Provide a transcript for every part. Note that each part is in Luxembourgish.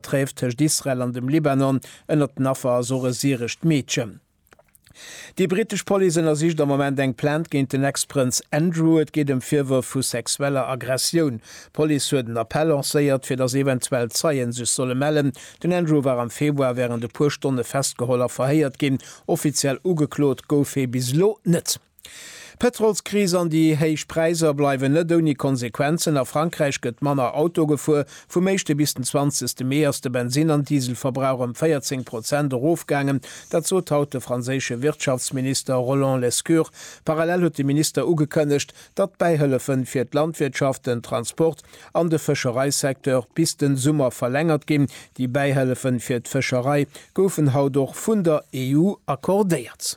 D'Tréf tëscht Israel an dem Libanon ënnert den Affer ass och e syrescht Meedchen. Déi brittesch Police ënnersicht am Moment eng Plainte géint den Ex-Prënz Andrew. Et geet ëm Virwërf vu sexueller Aggressioun. D'Police huet en Appell lancéiert, fir datt eventuell Zeien sech solle mellen. Den Andrew war am Februar wärend e puer Stonne festgeholl a verhéiert ginn. Offiziell ugeklot gouf hie bis elo net. D'Pëtrolskris an déi héich Präisser bleiwen net ouni Konsequenzen. A Frankräich gëtt manner Auto gefuer. Vum éischte bis den zwanzegste Mee ass de Bensinn an Dieselverbrauch ëm 14 Prozent erofgaangen. Dat sot haut de franséische Wirtschaftsminister Roland Lescure. Parallel huet de Minister ugekënnegt, datt d'Bäihëllefe fir d'Landwirtschaft, den Transport an de Fëschereisecteur bis den Summer verlängert ginn. Déi Bäihëllefe fir d'Fëscherei goufen haut och vun der EU accordéiert.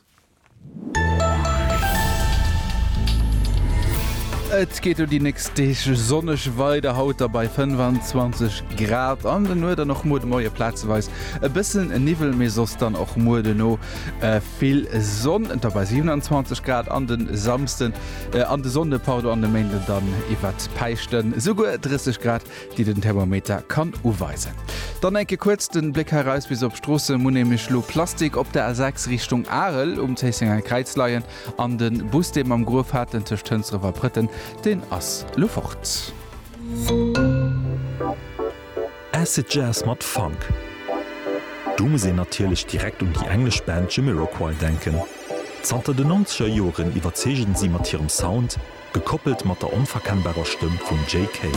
Et geet elo déi nächst Deeg sonneg weider, haut da bei 25 Grad an den Nuet an och muer de Moie plazeweis e bëssen Niwwel, mee soss dann och muer duerno vill Sonn. Da bei 27 Grad an de Samsden, an de Sonnde pardon, an de Méinden dann iwwert d'Päischten esouguer 30 Grad. déi den Thermometer kann uweisen. Dann enke kuerz den Bléck heraus bis op d'Stroossen, Mu nämlech lo Plastik op der A6 Richtung Arel um Zéissenger Kräiz leien an den Bus dee mam Gruef hat den tëscht Hënsdref a Prëtten deen ass lo fort. Acid Jazz mat Funk, do muss een natierlech direkt un déi englesch Band Jamiroquai denken. Zanter den Nonzeger Joren iwwerzeegen si mat hirem Sound, Gekoppelt mat der onverkennbarer Stëmm vum Jay Kay.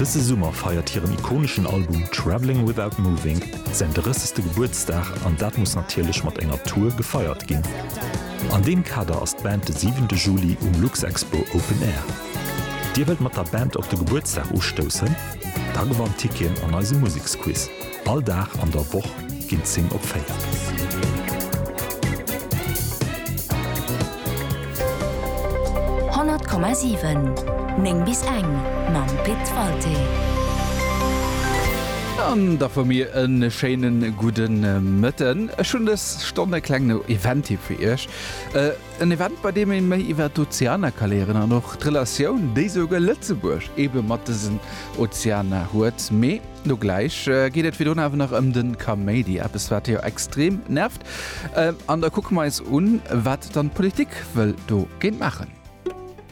Dëse Summer feiert hiren ikoneschen Album Travelling Without Moving säin 30. Gebuertsdag an dat muss natierlech mat enger Tour gefeiert ginn. An deem Kader ass d'Band de 7 Juli um Luxexpo Open Air. Dir wëllt mat der Band op de Gebuertsdag ustoussen? Da gewannt Ticketen an eisem Museksquiz. All Dag an der Woch ginn d'Zing op 4. Honnert Komma siwen, néng bis eng mam Pit Walté. An da fu mir e schéine gudde Mëtten. Ech hunn dës Stonn e klengen Event fir Iech. En Event bei deem ee méi iwwer d'Ozeanerkaléieren an och d'Relatioun, déi souguer Lëtzebuerg ebe mat dësen Ozeaner huet. Mee lo gläich geet et virdrun awer nach ëm de Kaméidi, eppes wat jo extrem nervt. An da kucke mer eis un, wat dann d'Politik wëll dogéint maachen.